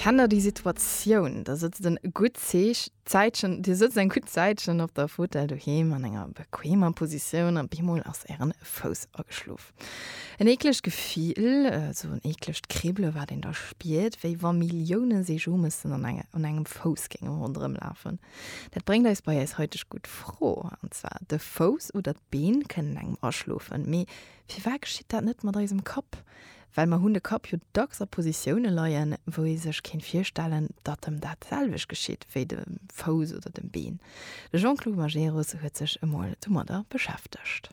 Kennt der déi Situatioun? Der sëtzt en gutt Zeech, Zäitchen, Dir sëtzt eng gutt Zäitchen op der Fotell doheem an enger bequemer Positioun a bemol ass Ären Fouss ageschlof. En eeklegt Gefill, esou en eeklegt Kribbele wat een da spiert, wéi wa Millioune Seejomëssen an un engem Fouss géinge ronderëm lafen. Dat bréngt eis bei eis heiteg gutt Fro, an zwar, de Fouss oder d'Been kënnen engem aschlofen, mee firwat geschitt dat net mat eisem Kapp? Well mer hunn de Kapp jo dacks a Positioune leien, wou ee sech kéint virstellen, datt em dat selwecht geschitt wéi dem Fouss oder dem Been. De Jean-Claude Majerus huet sech emol domadder beschäftegt.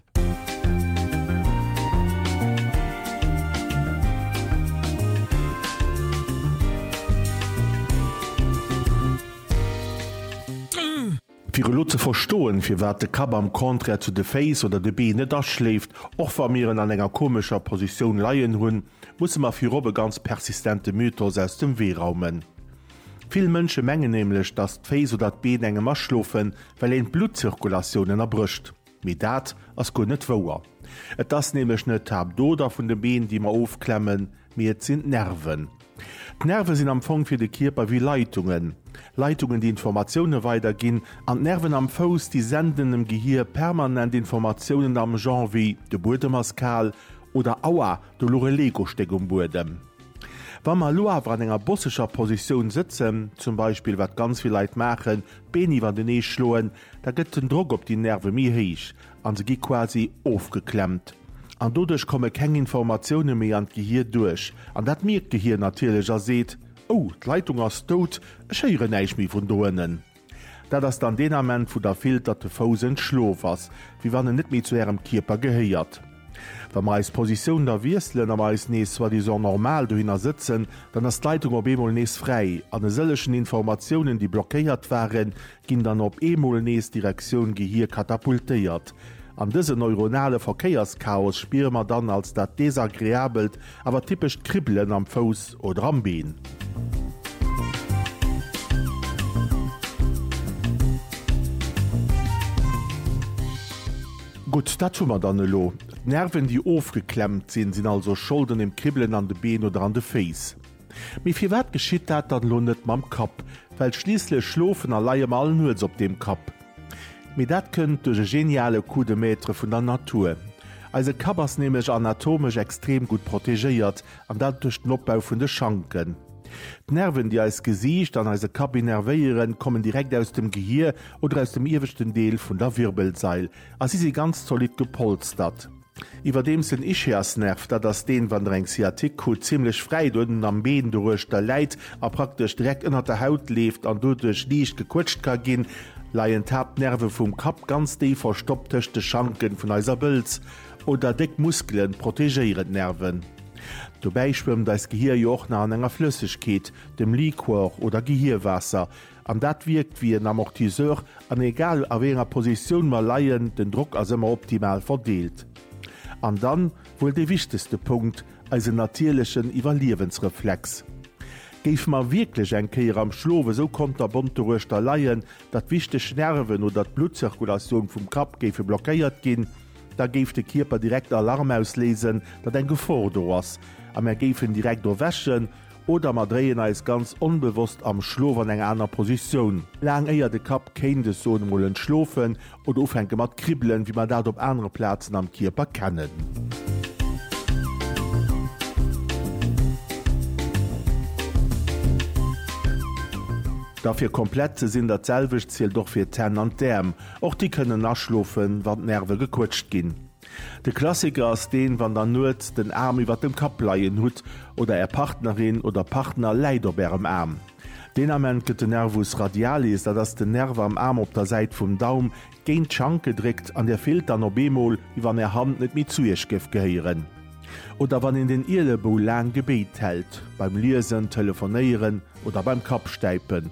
Fir elo ze verstoen, firwat de Kapp am Contraire zu de Féiss oder de Been net aschléift, och wa mir en an enger komescher Positioun leien hunn, musse mer virop e ganz persistente Mythos aus dem Wee raumen. Vill Mënsche mengen nämlech, dass d'Féiss oder d'Been engem aschlofen, well een d'Bluttzirkulatioun ënnerbrécht. Mee dat ass guer net wouer. Et ass nämlech net d'Haaptoder vun de Been, déi mer ofklemmen, mee et sinn d'Nerven. D'Nerve sinn am Fong fir de Kierper wéi Leitungen. Leitungen, déi Informatioune weiderginn an d'Nerven am Fouss, déi senden dem Gehier permanent Informatiounen am Genre wéi de Buedem ass kal oder Aua, do luch e Lego-Stéck um Buedem. Wa mer elo awer an enger bosseger Positioun sëtzen, zum Beispill wat ganz vill Leit maachen, d'Been iwwertenee schloen, Da gëtt den Drock op déi Nerve méi héich a se gi quasi ofgeklemmt. An doduerch komme keng Informatioune méi an d'Gehir duerch. An dat mierkt d'Gehir natierlech a seet, Oh, d'Leitung ass dout, ech héieren näischt méi vun do ënnen. Dat ass dann deen Ament, wou Der fillt, datt de Fouss entschlof ass, wéi wann en net méi zu Ärem Kierper gehéiert. Wa mer eis Positioun da wiesselen a mer eis nees soi-disant normal dohinner sëtzen, dann ass d'Leitung op eemol nees fräi an e sëllechen Informatiounen, déi blockéiert waren, ginn dann op eemol nees Direktioun Gehir katapultéiert. An dëse neuronale Verkéierschaos spiere mer dann als dat desagreabelt, awer typescht Kribbelen am Fouss oder am Been. Gutt, dat hu mer dann elo. D'Nerven, déi ofgeklemmt sinn, sinn also schold un dem Kribbelen an de Been oder an de Féiss. Mee firwat geschitt dat dann elo net mam Kapp? Well schliisslech schlofen a leie mer all nuets op deem Kapp. Mee dat kënnt duerch e geniale Coup de Maître vun der Natur. Eise Kapp ass nämlech anatomesch extrem gutt protegéiert, an dat duerch den Opbau vun de Schanken. D'Nerven, déi eist Gesiicht an eise Kapp innervéieren, kommen direkt aus dem Gehier oder aus dem ieweschten Deel vun der Wirbelsail a si si ganz zolidd gepolstert. Iwwerdeems den Ischiasnerv, dat ass deen, wann der eng Sciatique krut, zimmlech fräit uerten am Been doruechter läit a praktesch direkt ënnert der Haut leeft an doduerch liicht gequëtscht ka ginn, leien d'Haaptnerve vum Kapp ganz déif verstoppt tëscht de Schanken vun eiser Bëlz oder déck Muskelen protegéieren d'Nerven. Dobäi schwëmmt eist Gehier jo och nach an enger Flëssegkeet, dem Liquor oder Gehierwaasser, An dat wierkt wéi en Amortisseur an egal a wéi enger Positioun mer leien, den Drock ass ëmmer optimal verdeelt. An dann wuel dee wichtegste Punkt, eisen natierlechen Iwwerliewensreflex. Géife mer wierklech eng Kéier am Schlof esou konterbont doruechter leien, datt wichteg Nerven oder d'Bluttzirkulatioun vum Kapp géife blockéiert ginn, da géif de Kierper direkt Alarm ausléisen, datt eng Gefor do ass a mer géifen direkt erwächen Oder mer dréien eis ganz onbewosst am Schlof an eng aner Positioun, laang éier de Kapp kéint, ech soen emol, entschlofen oder ufänke mat kribbelen, wéi mer dat op anere Plazen am Kierper kennen. Da fir komplett ze sinn, dat selwecht zielt och fir d'Hänn an d'Äerm, och déi kënnen aschlofen, wann d'Nerve gequëtscht ginn. De Klassiker ass deen, wann der nuets den Aarm iwwert dem Kapp leien hutt oder är Partnerin oder Partner läit op ärem Aarm. Deen Ament gëtt de Nervus radialis, dat ass den Nerv am Aarm op der Säit vum Daum, géint d'Schank gedréckt an dir fillt dann op eemol, wéi wann är Hand net méi zu iech géif gehéieren. Oder wann een den Ielebou laang gebéit hält, beim Liesen, Telefonéieren oder beim Kappstäipen.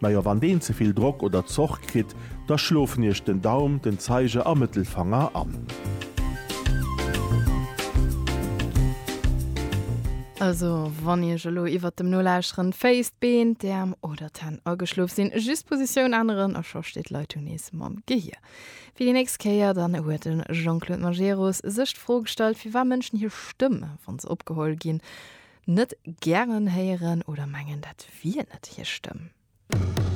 Najo, wann deen ze vill Drock oder Zorg kritt, da schlofen iech den Daum, den Zeiger a Mëttelfanger an. Also, wann iech elo iwwert dem Nolauscheren d'Féiss, d'Been, d'Äerm oder d'Hänn ageschlof sinn, just d'Positioun änneren a scho steet d'Leitung nees mam Gehier fir déi nächst Kéier. Dann huet de Jean-Claude Majerus sech d'Fro gestallt, firwat Mënschen hir Stëmm, wa se opgeholl ginn, net gären héieren oder mengen dat wier net hir Stëmm.